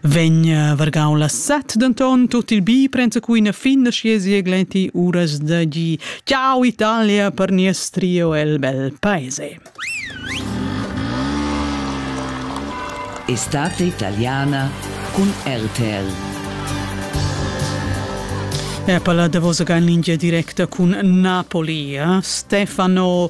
Vegn eh, vargau la set denton tut il bi prensa cuina fin da schiesi e glenti uras da gi. Ciao Italia per nies trio el bel paese. Estate italiana con RTL. E palla da vosa linea directa con Napoli. Eh? Stefano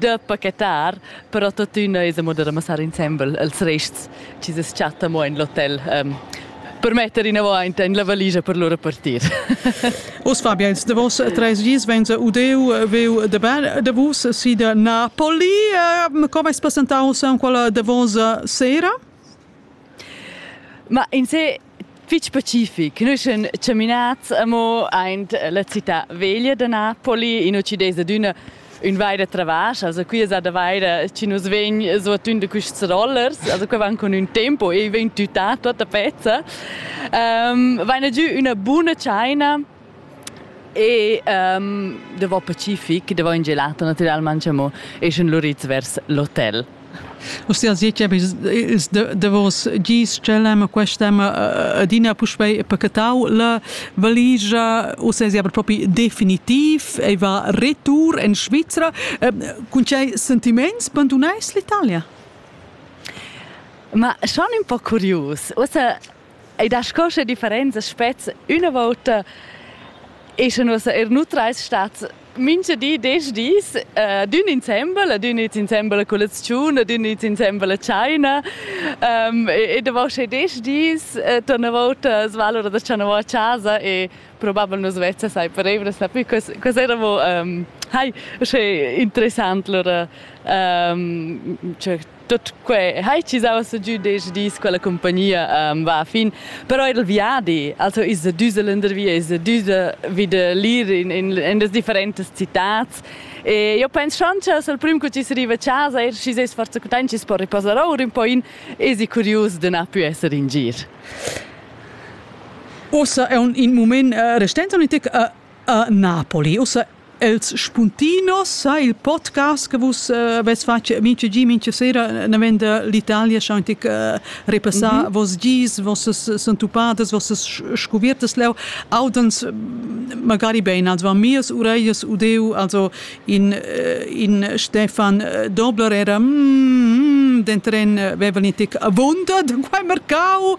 da pachetar, però tuttina es amo da ramassar insembel els rests chi se chatta mo in l'hotel. Ähm, per metter inavant in la valigia per lura partir. Us Fabiens, de vos tres gis venza udeu veu de ber de vus si de Napoli. Ehm, com es presentaus en quella de vos sera? Ma in se fitg specific. Nus sun chaminats amo aint la città veglia da Napoli, in uccides ad üna ün vaida travasch, also qui es da vaida chi nus vegn suotun da quists rollers, also que van con ün tempo e vegn tütà tuotta pezza. Um, vaina giü üna buna tschaina E um, davò Pacific, davò in gelato naturalmente amo, e schon luriz vers l'hotel. Ostia Ziceb is davos gis celem quest'em adina puspei pacatau la valigia o se aber propi definitiv e va retour in Svizzera cun cei sentiments bandunais l'Italia Ma schon un po curius. Ussa Ei dat sco sche differenzas spez üna vota e sche nus er nutrais stat mincha di desch dis uh, d'ün insembel, ad ün its insembel a colaziun, ad ün its insembel a tschaina um, e, e davò sche desch dis uh, torna vota sva l'ura da tschanavò a casa e probabel nus vezza sai per evras na più quas, quas eravamo um, hai, sche interessant lura um, cioè, Tut quei hai ci saua giu desch dis quella compagnia um, va a fin. Però il viadi, also is düse lendervia, is düse wieder lir in, in, in das differentas citats. E io pens schon che sul prim che ci arriva a casa, er ci ses forza content, ci si può riposare ora un po' in, esi curios de na più essere in gir. Ossa è un in moment uh, restente un tic uh, uh, Napoli. Ossa Els spuntinos sa il podcast che vus avais fatg mincha gi, mincha sera navend l'Italia scha antic repassà mm -hmm. vos gis, vossas sentupadas, vossas scuviertas leu audans magari bein, also van mias uraias udeu, also in, in Stefan Dobler era mm, dentren vevel intic avunda da quai mercau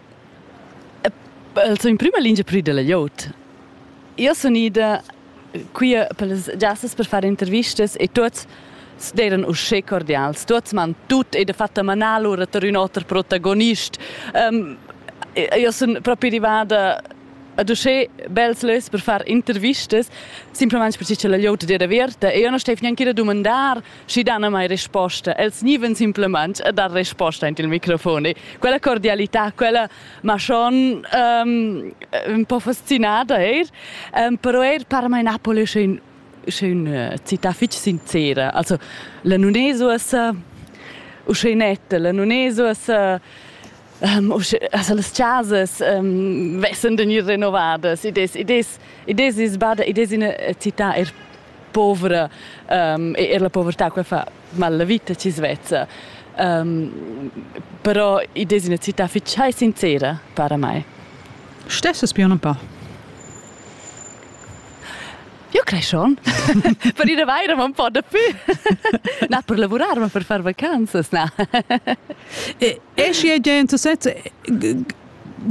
El sun in prüma lingia prü da la glieud. Io sun ida qui per las giassas per far intervistas e tuots d'eiran uschè cordials. Tuots m'han tut e dafatta manà lura tar ün oter protagonist. Um, io sun propi rivada ad uschè bels lös per far intervistas, simplamaing perche cha la glieud d'era averta e io non staiv gnanca da dumandar Schi dan mai risposta, els gnivan simplamaing a dar risposta aint il microfon e quella cordialità, quella ma schon um, ün po fascinada eir, um, però eir parmai Napoli sche ün sche üna città fich sincera. Also la nun es uossa uschè netta, la nun es uossa um, also las chasas um, vessan da gnir renovadas. Id es, id es, id es isbada, id es üna città er povera um, e er la povertà qua fa mal la vita ci svezza. Um, però i des una città fitschai sincera para mai. Stesses più un po'. Io crei schon. per ir vaire ma un po' da più. na, per lavorare, ma per fare vacanzas, na. e esci gente, sezza,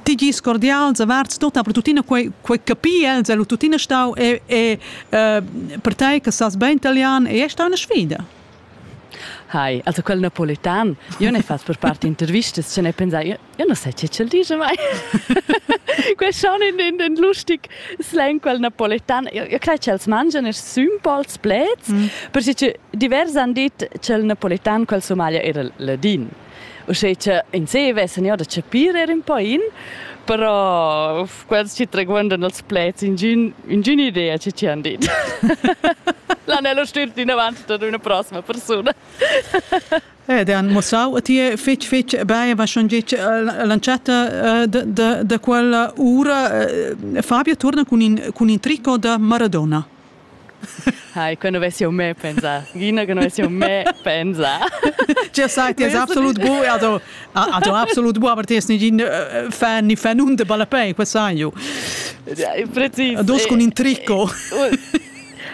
Tigis cordials avarts tutta per tuttina quei quei capi els e tuttina stau e e per tei che sas bein italian e è stau una sfida. Hi, also quel napoletan, io ne fas per parte intervistas, ce ne pensai, io, io non sai ce c'è dice mai. Questo è un, un, un lustig slang, quel napoletan. Io, io credo che els mangiano i simpols plets, mm. perché diversi hanno detto che il napoletan, quel Somalia, era ladin. Uschè cha ins vessan eau da chapir eir ün po in, però quels chi traguondan als pleds ingün ingün idea chi chi han dit. L'Anello stürt inavant ad üna prossima persuna. Ed han mostrau a ti fitg fitg bine was schon gic lanciata da quella ura. Fabio torna cun in, cun in tricot da Maradona. Hai, que nu vess eu mê pensà. Gina, que nu vess eu mê pensà. Tgè sai, ti es absolut bu, also, also absolut bu, aber ti es negin äh, fan ni fanun de ballapei, que sai ju. Precis. Dus con in tricco.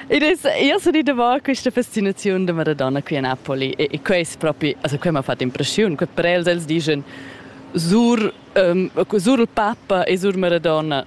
Ed es, io so dire va questa fascinazione de Maradona qui a Napoli e, e quest proprio, also quel mi ha fatto impressione, que prels els dicono sur, um, sur il Papa e sur Maradona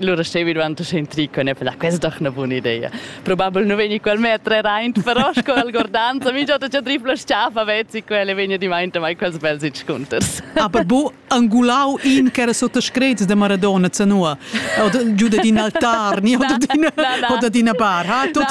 Allora stevi dvanto centrico e ne per questa doch una buona idea. Probabile non vegni quel metre reint, però sco el gordanza, mi già già tripla sciafa vezzi quelle vegna di mainte mai quels belsi scunters. Aber bo angulau in che era sotto screz de Maradona zanua. Oder giù din altar, ni oder din oder din bar, ha tut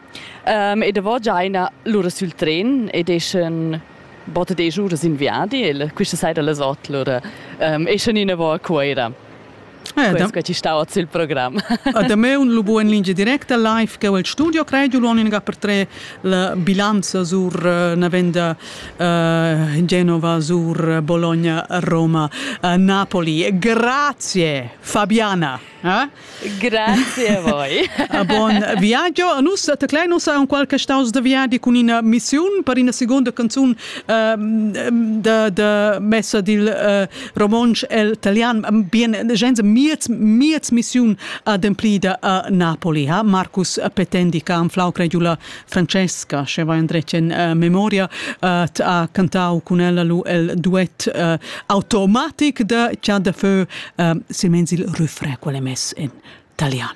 Um, e davò già ina l'ura sul tren ed eschan botta desch uras in viadi e questa sera las otg l'ura um, eschan inavò a Cuira. Ah, da... Quai ci stava sul programm. Ah, da me un lubu en lingia directa live che il studio credo l'unica per tre la bilanza sur eh, una venda uh, Genova sur Bologna Roma uh, Napoli. Grazie Fabiana. Grazie voi. Ah, bon, viaggio. Nus te klein uns un qualche staus de viadi con una missione per una seconda canzone uh, de, de messa dil uh, romansch el italian. Bien, gens miez miez missione ademplida a Napoli, ha Marcus Petendi che han flau cregiula Francesca, sche va endretg en uh, memoria, uh, ha cantau cun ella lu el duet uh, automatic de Chant de Feu, uh, silmeins il refrain quel è mess in italian.